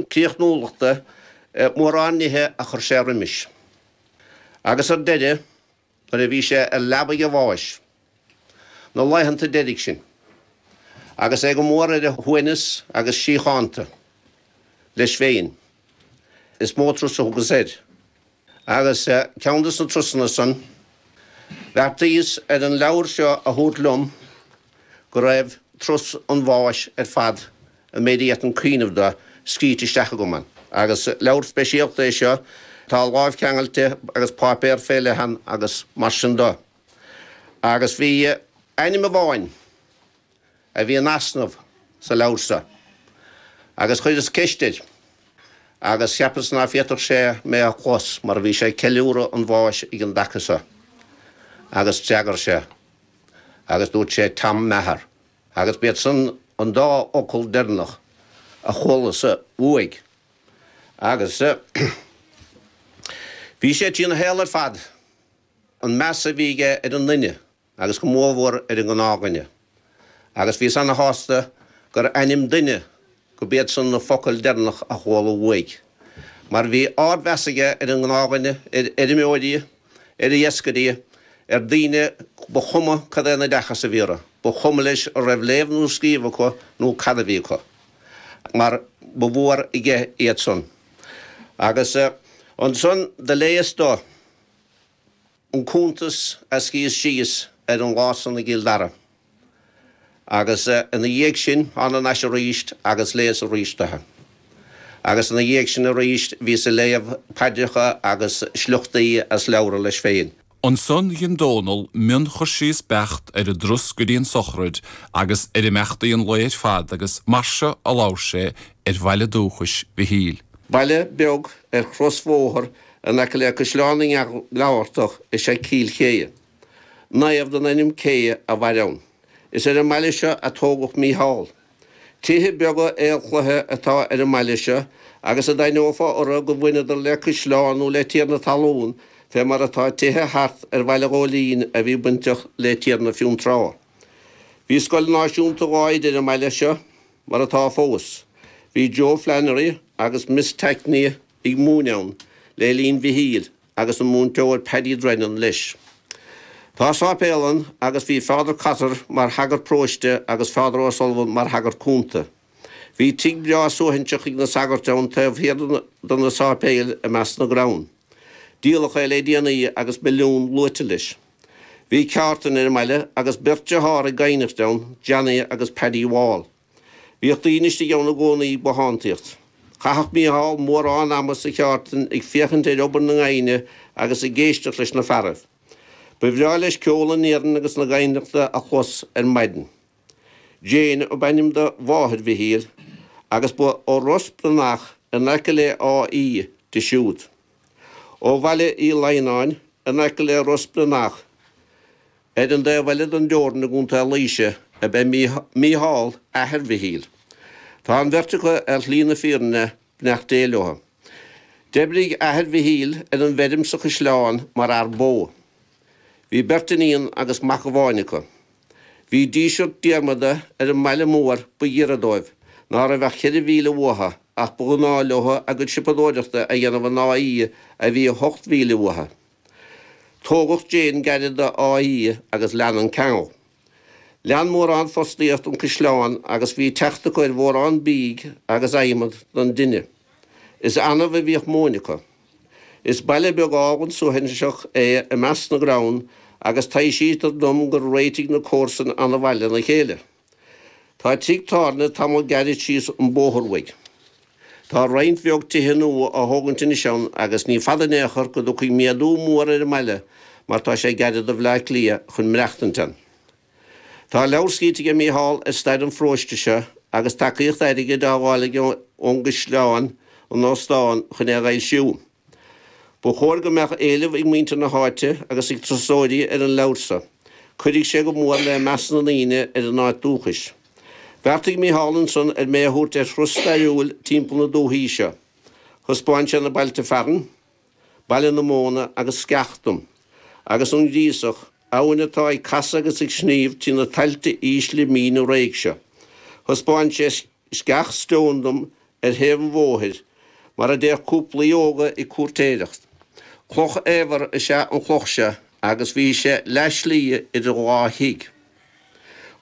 críochnúlachta i mórán nithe a chuir sé roimis, agus ar deireadh, nuair a bhí sé ar leabaidh a bháis, na laethanta deiridh sin, agus é go mór ar a shuaimhneas agus síochánta leis féin, is mó trus a thugas air. Agus ceann de na trusanna san, bheartaíos ar an leabhar seo a thabhairt liom go raibh Trus an Bháis ar fad an méid a fhéadfainn cuimhneamh do, scríte isteach agam ann. Agus leabhar speisialta é seo, tá lámhcheangailte agus páipéar fé leith ann agus mar sin do. Agus bhí ainm amháin. a bhí in easnamh sa leabhar seo agus chuireas ceist air agus cheapas ná féadfadh sé mé a chlos mar bhí sé ag ceiliúradh an bháis ag an dtaca seo agus d'fhreagair sé agus dúirt sé Tom Meagher agus b'iadsan an dá fhocal deireanach a chualas uaidh agus bhí sé trína shaol ar fad an meas a bhí aige ar an nduine agus go mórmhór ar an ngnáthdhuine, agus bhíos ana-shásta gur ainm duine go b'iad san na focail deireanach a chuala uaidh, mar bhí ardmheas aige ar an ngnáthdhuine, ar fheirmeoirí, ar iascairí, ar daoine ba chuma cad é an oideachas a bhí orthu, ba chuma leis an raibh léamh nó scríobh acu nó cad a bhí acu, mar ba mhór aige iad san. Agus ansan do léas dó. an cuntas a scríos síos ar an lá san i gCill Dara, agus ina dhiaidh sin thána thar n-ais arís agus léas arís dó é, agus ina dhiaidh sin arís bhíos ag léamh paidreacha agus sliochtaí as leabhra leis féin. Ansan dhein Dónall mion-chursíos beacht ar an dtrus go dtí an sochraid agus ar imeachtaí an lae ar fad agus mar seo a labhair sé ar bhaile dúchais Mhichíl. Baile beag ar chrosbhóthar In aice le Caisleán na nGearaltach is ea Cill Chéidhe. Naomh den ainm Céidhe a mhair ann. Is ar an mbaile seo a tógadh Mícheál. Tithe beaga aolchloiche atá ar an mbaile seo agus a d'aithneofá orthu go mbaineadar le caisleán nó le tiarna talún fé mar atá tithe thart ar Bhaile an Ghóilín a bhí bainteach le Tiarna Fionntrá. Bhí scoil náisiúnta dhá oide ar an mbaile seo mar atá fós. Bhí Joe Flannery agus Miss Tackney a. ag múineadh ann le linn Mhichíl agus an múinteoir Paddy Drennan leis. Tá sáipéal ann agus bhí Father Cotter mar shagart próiste agus Father O'Sullivan mar shagart cúnta. Bhí tigh breá suaithinseach ag na sagairt ann taobh thiar de na sáipéil i measc na gcrann. Díoladh é le déanaí agus milliún luaite leis. Bhí ceártan ar an mbaile agus beirt dearthár ag gaibhneacht ann, Johnny agus Paddy Wall. Bhíodh daoine istigh ann i gcónaí ag bothántaíocht. Chaitheadh Mícheál mórán ama sa cheártain ag féachaint ar obair na ngaibhne agus ag éisteacht leis na fearaibh. Ba bhreá leis ceol an iarainn agus na gaibhneachta a chlos ar maidin. Jane ab ainm do mháthair Mhichíl agus ba ó Ros Branach in aice le Áth Í di siúd. Ó Bhaile Uí Laigheanáin, in aice le Ros Branach, ar an taobh eile den dteorainn i gContae Laoise, ab ea Mícheál, athair Mhichíl. Tá an bheirt acu ar shlí na fírinne, beannacht Dé leo. D'oibrigh athair Mhichíl ar an bhfeirm sa Chaisleán mar fhear bó. Bhí beirt iníon agus mac amháin acu. Bhí Díseart Diarmada ar an mbaile mór ba ghiorra dóibh, ná raibh ach cheithre mhíle uathu, ach ba ghnáth leo a gcuid siopadóireachta a dhéanamh in Áth Í a bhí ocht mhíle uathu. Tógadh Jane gairid d'Áth Í agus lean an ceangal. Lean mórán fostaíocht an caisleán agus bhí teacht acu ar mhórán bídh agus adhmad don dtine. Is annamh a bhíodh móin acu. Is baile beag álainn suaithinseach é i measc na gcrann agus taibhsítear dom gur réitigh na comharsain an-mhaith lena chéile. Tá tigh tábhairne tamall gairid síos an bóthar uaidh. Tá roinnt bheag tithe nua á thógaint anois ann agus ní fada in aon chor go dtiocfaidh méadú mór ar an mbaile mar tá sé gairid do Bhleá Cliath chun maireachtaint ann. Tá leabhar scríte ag Mícheál ar stair an pharóiste seo agus tacaíocht airgid á fháil aige ón gCaisleán, an Óstán, chun é a fhoilsiú. Ba chóir go mbeadh éileamh ag muintir na háite agus ag turasóirí ar an leabhar seo. Cuirfidh sé go mór le meas na ndaoine ar a n-áit dúchais. Bheartaigh Mícheál ansan ar mé a thabhairt ar thuras stairiúil timpeall na dúthaí seo. Thaispeáin sé na bailte fearainn. Baile na Móna agus Sceach dom, agus an Ghríosach, abhainn atá ag casadh agus ag sníomh trí na tailte ísle míne réidh seo. Thaispeáin sé Sceach Stone dom ar thaobh an bhóthair, mar a dtéadh cúplaí óga ag cúirtéireacht. Cloch fhaobhair is ea an chloch seo agus bhí sé leathslí idir dhá thigh.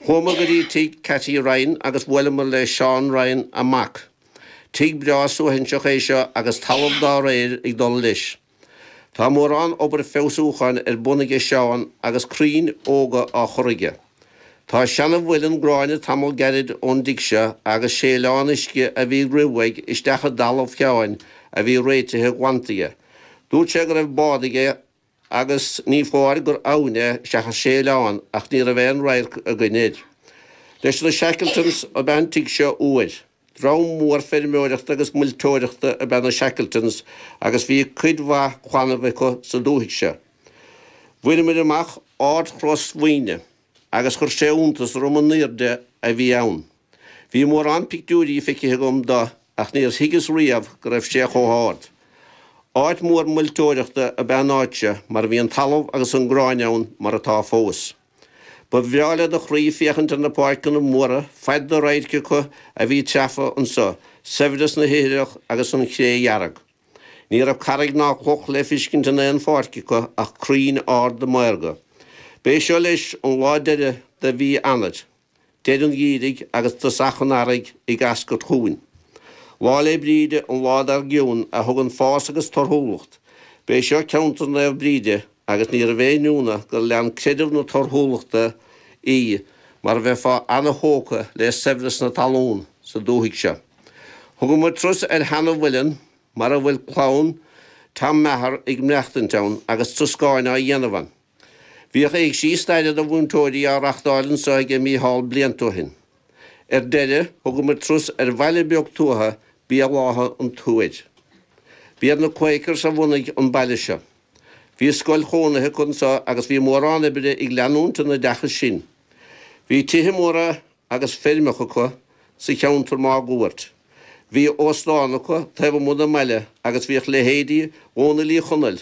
Chuamar go dtí tigh Katy Ryan agus bhuaileamar le Seán Ryan, a mac. Tigh breá suaithinseach é seo agus talamh dá réir ag dul leis. Tá mórán obair feabhsúcháin ar bun aige Seán agus crainn óga á chur aige. Tá seana-mhuileann gráinne tamall gairid ón dtigh seo agus séileán uisce a bhí ag rith uaidh isteach i dtalamh Sheáin a bhí réitithe glanta aige. Dúirt sé go raibh bád aige agus ní foláir gur abhainn é seachas séileán, ach ní raibh aon radharc againn air. Leis na Shackletons ab ea an tigh seo uair. Dream mór feirmeoireachta agus muilteoireachta ab ea na Shackletons agus bhí cuid mhaith clannaibh acu sa dúthaigh seo. Bhaineamair amach Ardchros Mhaoine agus chuir sé iontas orm an aoirde a bhí ann. Bhí mórán pictiúirí feicthe agam de ach níor thuigeas riamh go raibh sé chomh hard. Áit mhór mhuilteoireachta ab ea an áit seo mar bhí an talamh agus an grán ann mar atá fós. Ba bhreá le do chroí féachaint ar na páirceanna móra faid do radhairc acu a bhí treafa anseo, saibhreas na hithreach agus an chré dhearg. Ní raibh carraig ná cloch le fiscint in aon pháirc acu ach crainn arda maorga. B'é seo leis, an lá deireadh de mhí Eanair. Deireadh an gheimhridh, agus tosach an earraigh ag eascairt chugainn, 'Lá 'le Bríde, an lá dar gcionn, a thugann fás agus torthúlacht'. B'é seo ceantar Naomh Bríde, agus níorbh aon ionadh gur lean creideamh na torthúlachta í, mar bheifeá ana-thógtha le saibhreas na talún sa dúthaigh seo. Thugamar trus ar sheana-mhuileann mar a bhfuil clann Tom Meagher ag maireachtaint ann, agus troscáin á dhéanamh ann. Bhíodh éigsí staire do mhúinteoirí á reachtáil anso aige Mícheál blianta ó shin. Ar deireadh, thugamar trus ar bhaile beag tuaithe, Béal Átha an Tuair. B'iad na Quakers a bhunaigh an baile seo. Bhí scoil chónaithe acu anso agus bhí mórán oibre ag leanúint an oideachais sin. Bhí tithe móra agus feirmeacha acu sa cheantar máguaird. Bhí óstán acu taobh amuigh den mbaile agus bhíodh leithéidí Dhónaill Uí Chonaill,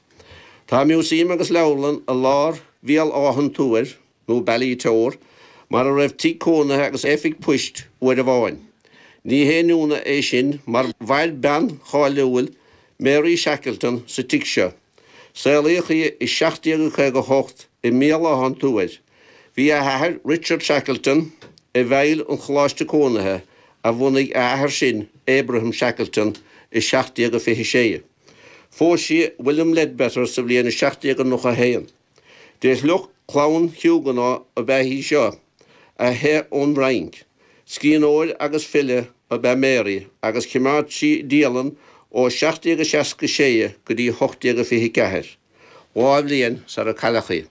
Tá músaem agus leabharlann i lár Bhéal Átha an Tuair, nó Ballitore, mar a raibh tigh cónaithe agus oifig poist uair amháin. Ní haon ionadh é sin mar mhair bean cháiliúil, Mary Shackleton, sa tigh seo. Saolaíodh í i 1758 i mBéal Átha an Tuair. Bhí a hathair, Richard Shackleton, i bhfeighil an choláiste cónaithe a bhunaigh a athair sin, Abraham Shackleton, i 1726. Phós sí William Leadbeater sa bhliain 1791. De shliocht clann Huguenot ab ea í seo, a theith ón bhFrainc. Scríbhneoir agus file ab ea Mary agus chimeád sí dialann ó 1766 go dtí 1824, dhá bhliain sar a cailleadh í.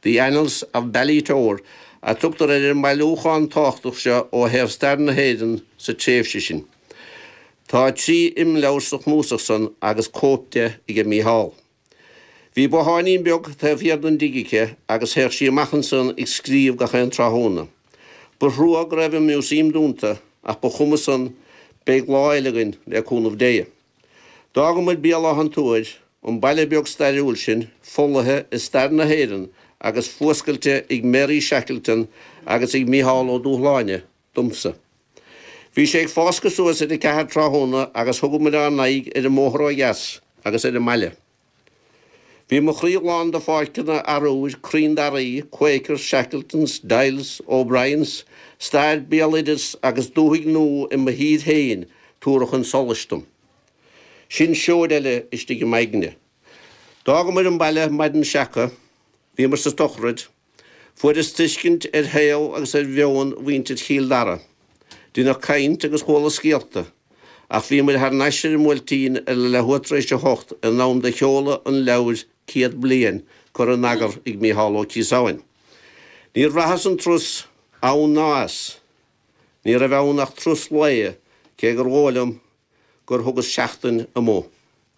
The Annals of Ballitore a tugtar ar an mbailiúchán tábhachtach seo ó thaobh stair na hÉireann sa tréimhse sin. Tá trí imleabhar sa chnuasach san agus cóip de aige Mícheál. Bhí botháinín beag taobh thiar den dtigh aici agus théadh sí amach ansan ag scríobh gach aon tráthnóna. Ba thrua go raibh an Museum dúnta ach ba chuma san, beidh lá eile againn, le cúnamh Dé. D'fhágamair Béal Átha an Tuair, an baile beag stairiúil sin, folaithe i stair na hÉireann agus fuascailte ag Mary Shackleton agus ag Mícheál Ó Dúshláine, domsa. Bhí sé ag fáscadh suas ar a ceathair tráthnóna agus thugamair ár n-aghaidh ar an mbóthar ó dheas agus ar an mbaile. Bhí mo chroí lán de pháirceanna arúir, crainn daraí, Quakers, Shackletons, Dailes, O'Briens, stair, béaloideas agus dúthaigh nua i mo thír féin tabhartha chun solais dom. Sin seoid eile istigh i m'aigne. D'fhágamair an baile maidin seaca. Bhíomair sa tsochraid. Fuaireas tuiscint ar shaol agus ar mheon mhuintir Chill Dara. Rinneadh caint agus chuala scéalta, ach bhíomair thar n-ais ar an mBuailtín ar leathuair tar éis a hocht in am do sheoladh an leabhair Céad Bliain curtha in eagar ag Micheál Ó Ciosáin. Níor bhraitheas an turas ann ná as. Ní raibh ann ach turas lae, cé gur dhóigh liom gur thugas seachtain amuigh.